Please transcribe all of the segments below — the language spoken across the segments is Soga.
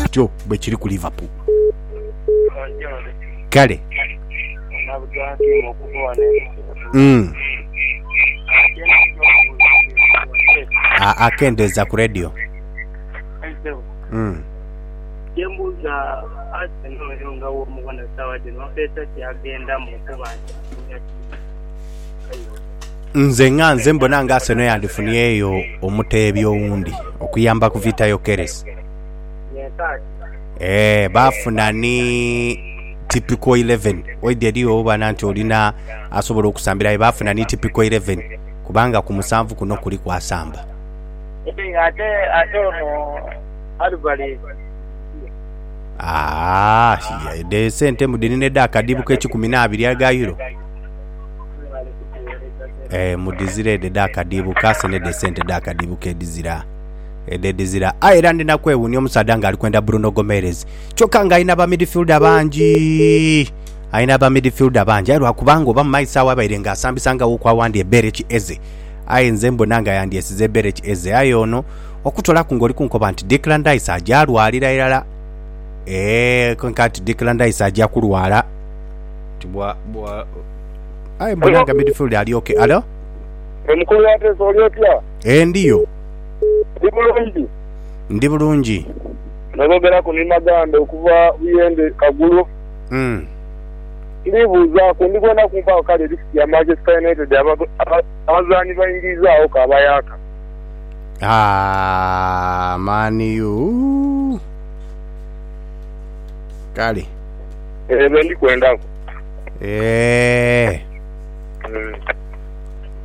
Kityo bwe kiri ku Liverpool. Kale. Mm. Aa, kendeza ku radio. Mm. Kyembuuza Arsenal oyo nga womubona sawa dhino mpeesa ki agendamu kuba Nze nga nze mbona nga Arsenal yandifuniyeyo omuteebi owundi okuyamba ku Vita Yokeres. Nyenkaati. Eeh, baafuna ni typical 11 oidha eri obana nti olina asobola okusambira aye baafuna ni typical 11 kubanga ku musanvu kuno kuliku asamba. Ate ate ate ono Alvarez ndiye. Aah, ye, dhe sente mbu dhirina edh'akadibu k'ekikumi n'abiri aga Euro. Mwebale kutuweereza sente. Eeh, mudhizire edho edh'akadiibu ka Arsenal edho esente edh'akadiibu k'edhizira. edhedhizira aye era ndi na kwewuunia omusaadha nga ali kwenda Bruno Gomeres kyokka nga alina ba midfielder bangi alina ba midfielder bangi aye lwakubanga oba mu maiso agho abaire nga asambisangagho ku awandi Ebereki Eze aye nze mbona nga yandyesize Ebereki Eze aye ono okutolaku ng'oli kunkoba nti Declan Rice aja alwalira irala eeh kwenka nti Declan Rice aja kulwala nti bwa bwa aye mbona nga midfielder ali okay alo Omukulu wa Press oli otya? Ee, ndiyo. Ndi bulungi. Ndi bulungi. N'oboogeraku ni maganda okuva buyende kagulu. Mm. Ndibuuzaaku, ndi kwenda kumpaaku kale lisiti ya Manchester United abazaani baingiizaaghoku abayaaka? Aah, Man U! Kale. Eyo be ndi kwendaku. Eeh. Mm.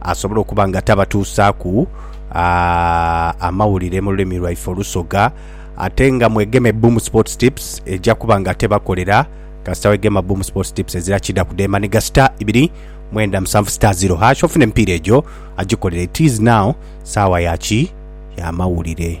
asobole okuba nga tabatuusaaku amawulire mu lulimi lwaife Olusoga ate nga mwegeme Boom Sports Tips eja kuba nga tebakolera kasita wegema Boom Sports Tips ezira kida kudemba ni gasita ibiri mwenda musanvu star zero hash ofuna emipiira egyo agikolera it is now saawa yaki yamawulire.